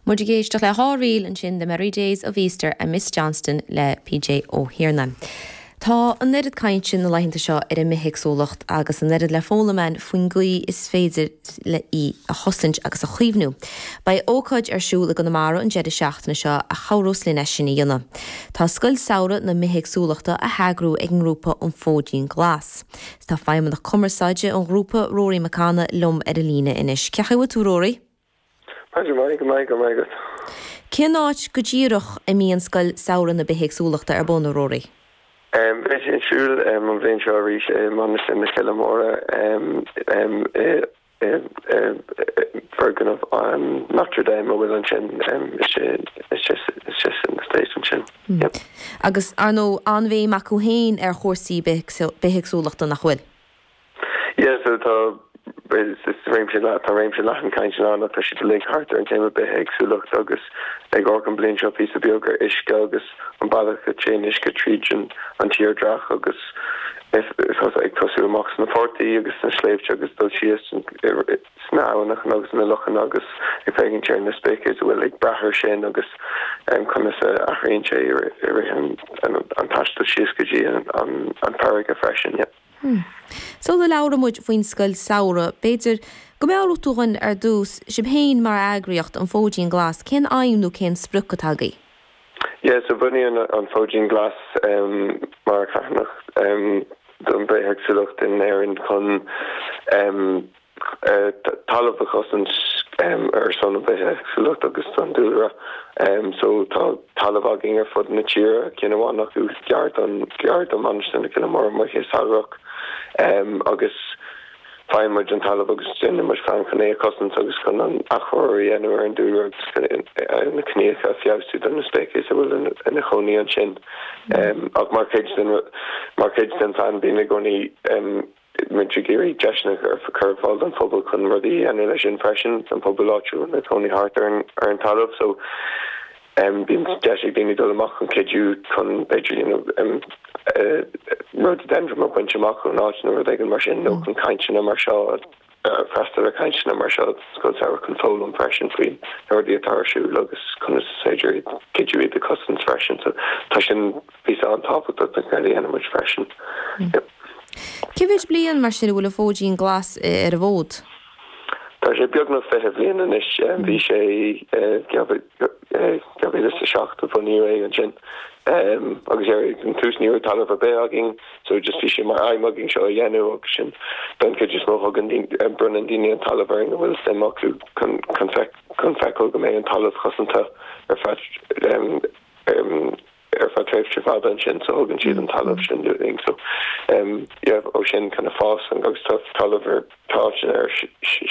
Muid ag éisteacht le dhá ríl ansin, The Merry Days of Easter and Miss Johnston le PJ Ó hIarna. Tá an oiread cainte na laethanta seo ar an mbithéagsúlacht agus an oiread le foghlaim ann faoin gcaoi is féidir le í a chosaint agus a chaomhnú. Beidh ócáid ar siúl i gConamara an deireadh seachtaine seo a chabhródh linn é sin a dhéanamh. Tá Scoil Samhraidh na Bithéagsúlachta á heagrú ag an ngrúpa An Fóidín Glas. Tá Feidhmeannach Cumarsáide an Ghrúpa, Rory McCanna, liom ar an líne anois. Cén chaoi a bhfuil tú, Rory? Go maith, go raibh maith agat. Cén áit go díreach a mbíonn Scoil Samhraidh na Bithéagsúlachta ar bun, a Rory? Beidh sí ar siúl an bhliain seo arís i Mainistir na Coille Móire i. bhfoirgneamh Notre Dame a bhfuil ansin istigh san estate ansin. Agus, ar ndóigh, an-bhéim acu féin ar chúrsaí bithéagsúlachta, nach bhfuil? Yeah, so tá réimse, tá réimse leathan cainteanna ann, tá siad uilig thart ar an téama bithéagsúlachta agus ag amharc an bhliain seo píosa beag ar uisce agus. an bealach a théann uisce tríd an tírdhreach agus ag tosú amach sna portaigh agus sna sléibhte agus ag dul síos sna habhainneacha agus sna lochanna agus ag féachaint ar na spéicis a bhfuil ag brath ar sin agus conas a athraíonn sé i rith an taistil síos go dtí an farraige freisin. Sula labhraímid faoin Scoil Samhraidh, b'fhéidir go meabhródh tú dhúinn ar dtús, sibh féin mar eagraíocht, An Fóidín Glas, cén aidhm nó cén sprioc atá agaibh? Yeah, so bunaíodh an Fóidín Glas mar charthanacht don bhithéagsúlacht in Éirinn chun talamh a chosaint ar son an bhithéagsúlacht agus don dúlra. So tá talamh againn ar fud na tíre, cinn amháin acu gar don, gar do Mhainistir na Coille Móire amuigh sa Chreagach agus. Faigheann muid an talamh agus déanann muid feidhm chun é a chosaint agus chun an athchóiriú a dhéanamh ar an dúlra agus chun na gnáthóga a feabhsú do na spéicis a bhfuil ina chónaí ansin. Ach mar chuid den phlean bíonn i gcónaí muid ag iarraidh deiseanna a chur ar fáil don phobal chun rudaí a dhéanamh leis sin freisin, don phobal áitiúil ina chónaí thart ar an talamh. Bíonn deis ag daoine dul amach chun cuidiú chun b'fhéidir you know rhododendron a bhaint amach ón áit nó rud éigin mar sin nó chun cainteanna mar seo a freastal ar chainteanna mar seo Scoil Samhraidh chun foghlaim freisin faoi na rudaí atá ar siúl agus conas is féidir iad cuidiú iad a cosaint freisin so tá sin píosa an-tábhachtach den obair a dhéanann muid freisin. Cé mhéid bliain mar sin a bhfuil an Fóidín Glas ar an bhfód? Tá sé beagnach fiche bliain anois. Bhí sé, 2007 a bunaíodh é ansin em agus ar an tús ní raibh talamh ar bith againn so just bhí sé mar aidhm againn seo a dhéanamh agus sin don chuid is mó thugann bronnann daoine an talamh orainn a bhfuil suim acu chun chun feiceáil go mbeidh an talamh cosanta ar feadh ar feadh tréimhse fada ansin so thugann siad an talamh sin dúinn so em yeah ó sin kind of fásann agus tá talamh ar tá áiteanna ar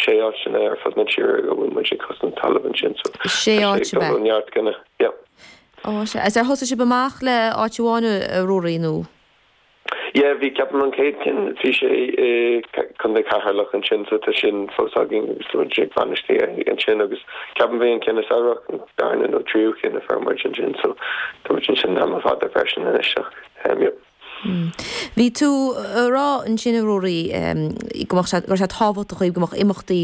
sé áiteanna ar fud na tíre go bhfuil muid ag cosaint talamh ansin so sé tá sé áit ag dul ó neart go neart yeah. Ó, sea. Is ar thosaigh sibh amach le áit amháin, a Ruairí, nó? Yeah, bhí ceapaim an chéad cinn, bhí sé i Contae Cheatharlach ansin so tá sin fós againn agus tá muid ag bainistiú é ansin agus ceapaim bhí an cinn sa Earrach an darna nó tríú cinn a fuair muid ansin so tá muid ansin le tamall fada freisin anois ach em yep. Bhí tú a' rá ansin a Ruairí em go mbeadh sé, go raibh sé tábhachtach dhaoibh go mbeadh imeachtaí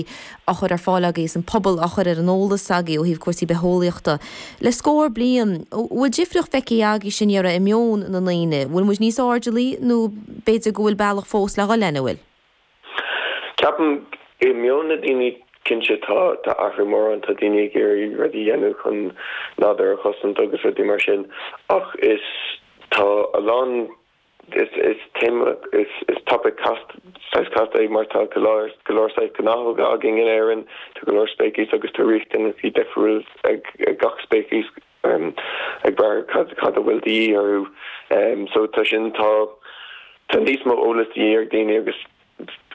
á chur ar fáil agaibh is an pobal á chur ar an eolas agaibh ó thaobh cúrsaí bitheolaíochta le scór bliain. An bhfuil difríocht feicthe agaibh sin dáiríre i meon na ndaoine? An bhfuil muid níos airdeallaí nó b'fhéidir go bhfuil bealach fós le dhul lena bhfuil? Ceapaim, i meon na ndaoine, cinnte tá tá athrú mór ann, tá daoine ag iarraidh rudaí a dhéanamh chun nádúr a chosaint agus rudaí mar sin ach is tá a lán, Is téama is topaic casta, saghas casta, é mar tá go leor, go leor saghas gnáthóga againn in Éirinn, tá go leor spéiceas agus tá riachtanais difriúil ag gach spéiceas ag brath ar cad a bhfuil de dhíth orthu. So tá sin, tá, tá níos mó eolas de dhíth ar dhaoine agus.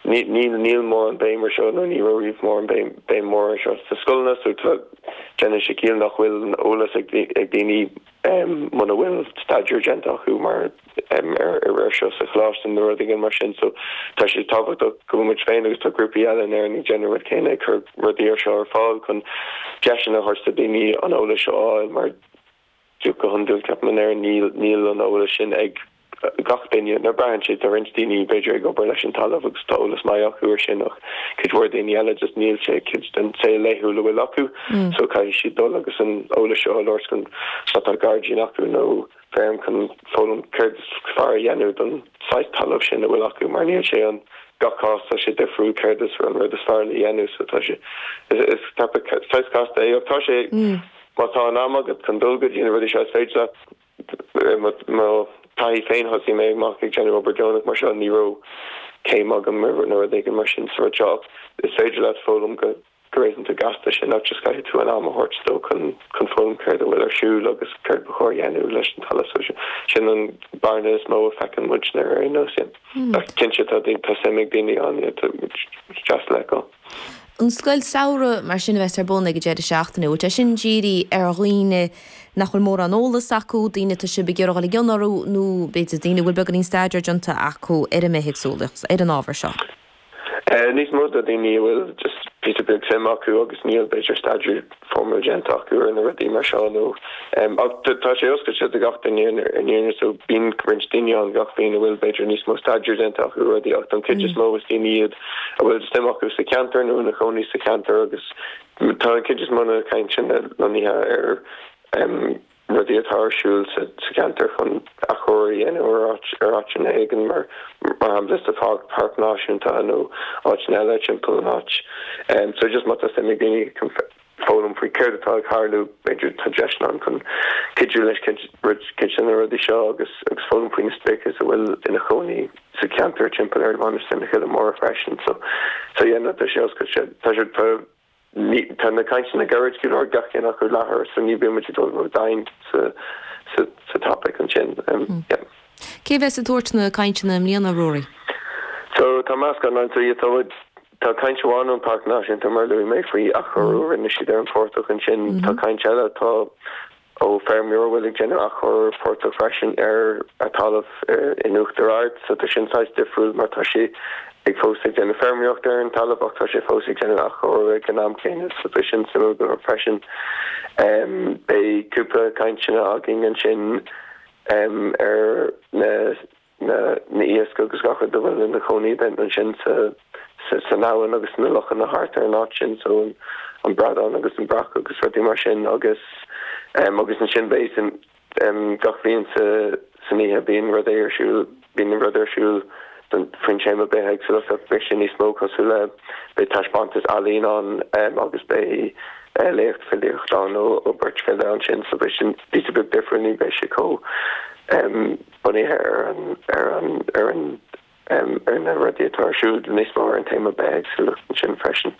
Níl, níl mórán béim ar seo, nó ní raibh riamh mórán béim, béim mhór ar seo sa scoileanna, so tá, déanann sé ciall nach bhfuil an eolas ag, ag daoine muna bhfuil staidéar déanta acu mar, ar, ar seo sa choláiste nó rud éigin mar sin, so tá sé tábhachtach go bhfuil muid féin agus tá grúpaí eile in Éirinn ag déanamh rud céanna, ag cur rudaí mar seo ar fáil chun deiseanna a thabhairt do daoine an eolas seo a fháil mar, go hiondúil, ceapaim, níl, níl an eolas sin ag gach duine, nó braitheann sé, tá roinnt daoine b'fhéidir ag obair leis an talamh agus tá eolas maith acu ar sin ach cuid mhór daoine eile just níl sé, cuid den saol laethúil a bhfuil acu so caithfidh siad dul agus an eolas seo a fháil, chun má tá gairdín acu nó feirm chun foghlaim céard is fearr a dhéanamh don saghas talamh sin a bhfuil acu mar níl sé an, gach cás tá sé difriúil céard is an rud is fearr le dhéanamh so tá sé, is, is ceapaim saghas casta é ach tá sé. Má tá an am agat chun dul go dtí na rudaí seo, is féidir leat. I mo thaithí féin, thosaigh mé amach ag déanamh obair deonach mar seo, ní raibh céim agam ar nó rud éigin mar sin sa rud seo, ach is féidir leat foghlaim go réasúnta gasta, sin nó just caithfidh tú an am a thabhairt dó chun foghlaim céard a bhfuil ar siúl agus céard ba chóir a dhéanamh leis an talamh. So sin an bearna is mó a feiceann muidne ar aon nós. Ach cinnte, tá suim ag daoine ann, is deas le feiceáil. an scoil samhraidh mar sin a bheas ar bun ag an deireadh seachtaine, an bhfuil sé sin dírithe ar dhaoine nach bhfuil mórán eolas acu, daoine atá sibh ag iarraidh dul i gcion orthu nó b'fhéidir daoine a bhfuil beagáinín staidéir déanta acu ar an mbithéagsúlacht, ar an ábhar seo? Níos mó do dhaoine a bhfuil just píosa beag suim acu agus níl b'fhéidir staidéar foirmeálta déanta acu ar na rudaí mar seo ach tá sé oscailte do gach duine i ndáiríre so bíonn roinnt daoine ann gach bliain a bhfuil b'fhéidir níos mó staidéar déanta acu ar rudaí ach don chuid is mó is daoine iad a bhfuil suim acu sa cheantar nó ina chónaí sa cheantar agus tá an chuid is mó de na cainteanna lonnaithe ar rudaí atá ar siúl sa cheantar chun athchóiriú a dhéanamh ar áiteanna éigin, mar shampla sa Pháirc Náisiúnta nó áiteanna eile timpeall an áit. So just má tá suim ag daoine foghlaim faoi céard atá ag tharlú, b'fhéidir tá deiseanna ann chun cuidiú leis cuid de na rudaí seo agus foghlaim faoi na speicis a bhfuil ina chónaí sa cheantar timpeall ar Mhainistir na Cille Móire freisin. So yeah, tá sé oscailte. Tá na cainteanna gairid go leor, gach ceann acu leathuair, so ní bheimid ag dul ródhomhain sa topaic ansin. Cé a bheas ag tabhairt na cainteanna i mbliana, Ruairí? So, tá meascán ann, so yeah, tá caint amháin ón Páirc Náisiúnta mar a luaigh mé faoi athchóiriú a rinne siad ar an phortach ansin, tá caint eile atá Ó feirmeoir a bhfuil ag déanamh athchóiriú phortach freisin ar a talamh in Uachtar Ard, so tá sin saghas difriúil mar tá sé ag fós ag déanamh feirmeoireachta ar an talamh ach tá sé fós ag déanamh athchóiriú ag an am céanna, so tá sin suimiúil go leor freisin. Beidh cúpla cainteanna againn ansin ar na na n-iasc agus gach rud a bhfuil ina chónaí ansin san abhainn agus sna lochanna thart ar an áit sin, so an bradán agus an breac agus rudaí mar sin agus agus ansin beidh gach bhliain san oíche bíonn rud ar siúl, bíonn rud ar siúl faoin téama bithéagsúlachta beidh sé níos mó cosúil le, beidh taispeántas ealaíne ann agus beidh léamh filíochta ann ó beirt file ansin so beidh sin píosa beag difriúil ní bheidh sé chomh Bunaithe ar ar an ar an ar na rudaí atá ar siúl níos mó ar an téama bithéagsúlachta ansin freisin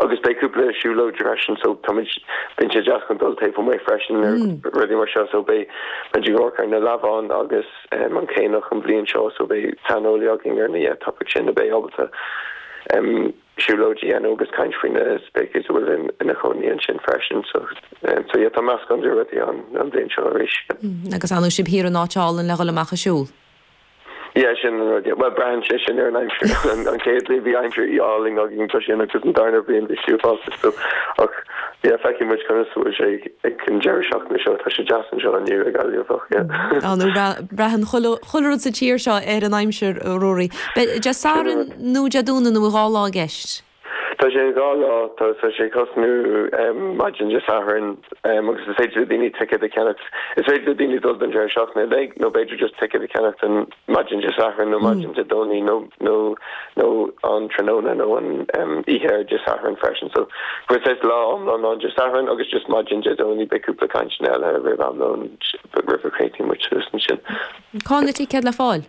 agus beidh cúpla siúlóid freisin so táimid, bíonn sé deas chun dul taobh amuigh freisin ar rudaí mar seo so beidh muid ag amharc ar na leamháin agus an caonach an bhliain seo so beidh saineolaí againn ar na topics sin a bheidh ábalta siúlóid a dhéanamh agus caint faoi na speicis a bhfuil ina chónaí ansin freisin. So so yeah tá meascán de rudaí ann an bhliain seo arís. Mm agus nach bhfuil sibh thiar in áit álainn le dhul amach ag siúl? Yeah sin an rud yeah. Bhuel braitheann sé sin ar an aimsir. An an chéad bhliain bhí aimsir álainn againn ansin agus an darna bliain bhí sliotán sa stuif ach yeah feicfidh muid conas a bhfuil sé ag ag an deireadh seachtaine seo tá sé deas anseo inniu i nGaillimh ach yeah. Á nó bra braitheann chuile chuile rud sa tír seo ar an aimsir a Ruairí. Beidh deas Samhraidh. nó Dé Domhnaigh nó dhá lá i gceist. Tá sé dhá lá, tá sé ag tosnú maidin Dé Sathairn agus is féidir le daoine ticéad a cheannacht, is féidir le daoine dul don deireadh seachtaine uilig nó b'fhéidir just ticéad a cheannacht don maidin Dé Sathairn nó maidin Dé Domhnaigh nó nó nó an tráthnóna nó an oíche ar Dé Sathairn freisin. So saghas lá iomlán ann Dé Sathairn agus just maidin Dé Domhnaigh beidh cúpla cainteanna eile roimh am lóin roimh a gcríochnaíonn muid suas ansin. Cá bhfuil na ticéid le fáil?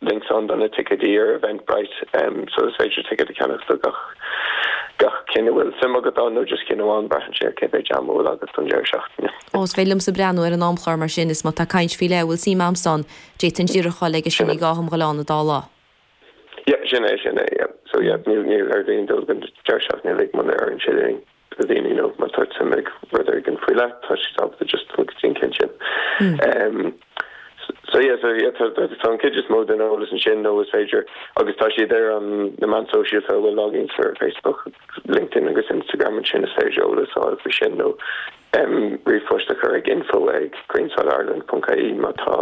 Links ann do na ticéidí ar Eventbrite so is féidir ticéad a cheannach do gach cinn a bhfuil suim agat ann, nó just cinn amháin, braitheann sé ar cé mhéid am a bhfuil agat don deireadh seachtaine. Ó, is féidir liomsa breathnú ar an amchlár mar sin is má tá caint faoi leith a bhfuil suim a'msa ann, d'fhéadfainn díreach dul aige sin, ní gá dhom dhul ann an dá lá. Yep, sin é, sin é, yep. So yep, níl ar aon duine dul don deireadh seachtaine uilig muna oireann sé linn. do dhaoine nó má tá suim acu i rud éigin faoi leith tá siad ábalta just dul go dtí an cinn sin ehm so yeah so yeah tá tá an chuid is mó den eolas ansin nó is féidir agus tá siad ar an na meáin sóisialta tá muid ar Facebook LinkedIn agus Instagram ansin is féidir eolas a fháil faoi sin nó ehm ríomhphost a chur chuig info ag greensodireland.ie má tá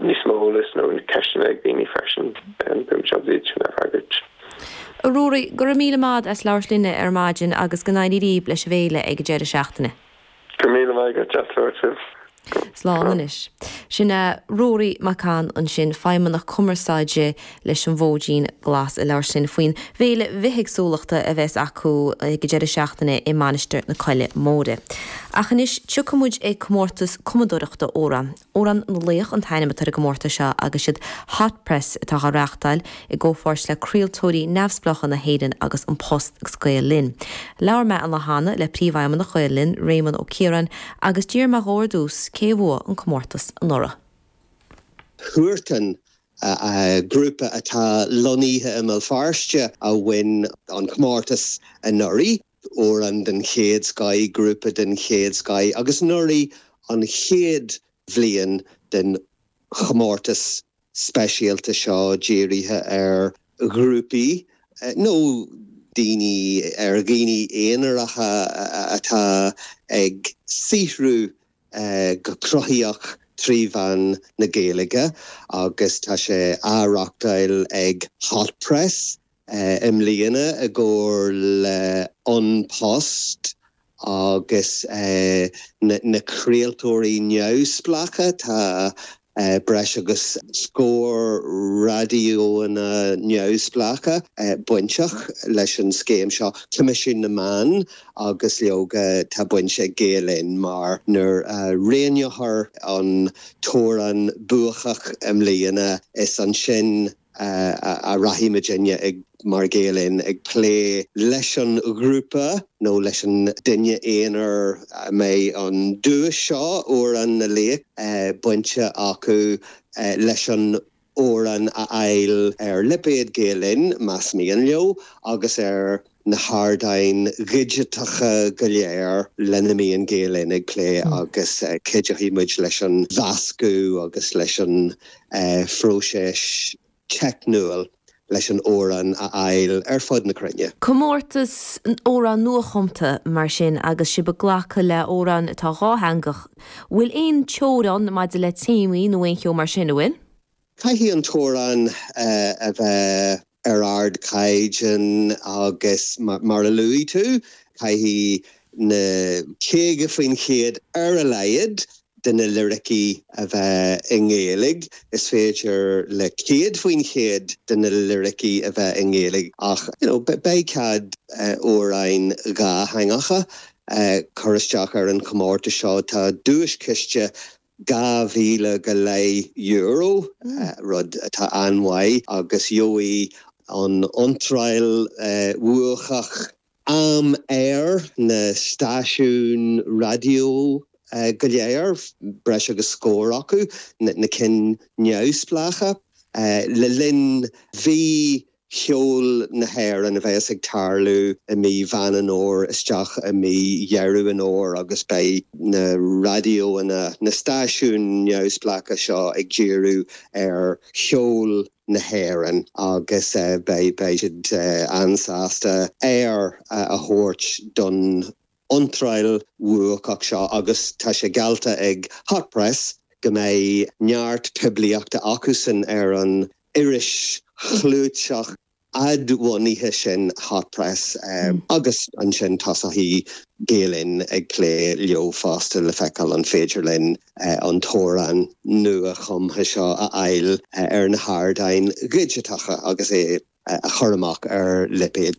níos mó eolais nó ceisteanna ag daoine freisin, beidh muid sásta é a fhreagairt. A Ruairí, go raibh míle maith agat as labhairt linne ar maidin agus go n-éirí libh leis an bhféile ag an deireadh seachtaine. Go raibh míle maith agat as labhairt libh. Slán anois. Sin é Ruairí McCann ansin, Feidhmeannach Cumarsáide leis an bhFóidín Glas ag labhairt linn faoin bhféile bhithéagsúlachta a bheas acu ag an deireadh seachtaine i Mainistir na Coille Móire. Ach anois, tiocfaidh muid ag comórtas cumadóireachta amhrán. Amhrán na Laoch an t-ainm atá ar an gcomórtas seo agus is iad Hot Press atá á reáchtáil, i gcomhpháirt le craoltóirí neamhspleácha na hÉireann agus An Post agus Gael Linn. Labhair mé an lá cheana le Príomhfheidhmeannach Gael Linn, Réamonn Ó Ciaráin, agus d'fhiafraigh mé dhó ar dtús cé a bhuaigh an comórtas anuraidh. Huartan grúpa atá lonnaithe i mBéal Feirste a bhain an comórtas anuraidh, amhrán den chéad scoith, grúpa den chéad scoith, agus anuraidh an chéad bhliain den chomórtas speisialta seo dírithe ar ghrúpaí nó daoine, ar dhaoine aonaracha atá ag saothrú go cruthaitheach trí mheán na Gaeilge agus tá sé á reáchtáil ag Hot Press i mbliana i gcomhar le An Post agus na craoltóirí neamhspleácha. Tá. breis agus scór raidiónna neamhspleácha bainteach leis an scéim seo, Coimisiún na Meán agus leoga tá baint ag Gael-Linn mar nuair a roghnófar an t-amhrán buachach i mbliana is ansin, a rachaimidinne mar Ghael Linn, ag plé leis an ghrúpa nó leis an duine aonair a mbeidh an duais seo, Amhrán na Laoch, bainte acu leis an amhrán a fháil ar lipéad Gael Linn, más mian leo, agus ar. na hardáin dhigiteacha go léir lena mbíonn Gael Linn ag plé agus cuideoidh muid leis an mheascadh agus leis an phróiseas teicniúil leis an amhrán a fháil ar fud na cruinne. Comórtas amhrán nuachumtha, mar sin, agus sibh ag glacadh le hamhráin atá dhátheangach, bhfuil aon teorainn maidir le téamaí nó aon cheo mar sin, a bhfuil? Caithfidh an t-amhrán a bheith ar ardchaighdeán agus, mar a luaigh tú, caithfidh na 50% ar a laghad de na liricí a bheith i nGaeilge. Is féidir le 100% de na liricí a bheith i nGaeilge ach beidh cead amhráin dhátheangacha cur isteach ar an chomórtas seo. Tá duaischiste dhá mhíle go leith euro, rud atá an-mhaith, agus gheobhaidh an iontráil bhuacach am ar na stáisiúin raidió go léir, breis agus scór acu, na cinn neamhspleácha, le linn mhí cheol na hÉireann a bheas ag tarlú i mí Mheán an Fhómhair isteach i mí Dheireadh an Fhómhair agus beidh na raidióanna, na stáisiúin neamhspleácha seo ag díriú ar cheol na hÉireann agus beidh siad an-sásta am aeir a thabhairt don. iontráil bhuacach seo agus tá sé geallta ag Hot Press go mbeidh neart poiblíochta acusan ar an iris chlúiteach fhadbhunaithe sin Hot Press agus ansin tosóidh Gael Linn ag plé leo fosta le feiceáil an féidir linn an t-amhrán nua-chumtha seo a fháil ar na hardáin dhigiteacha agus é a chur amach ar lipéad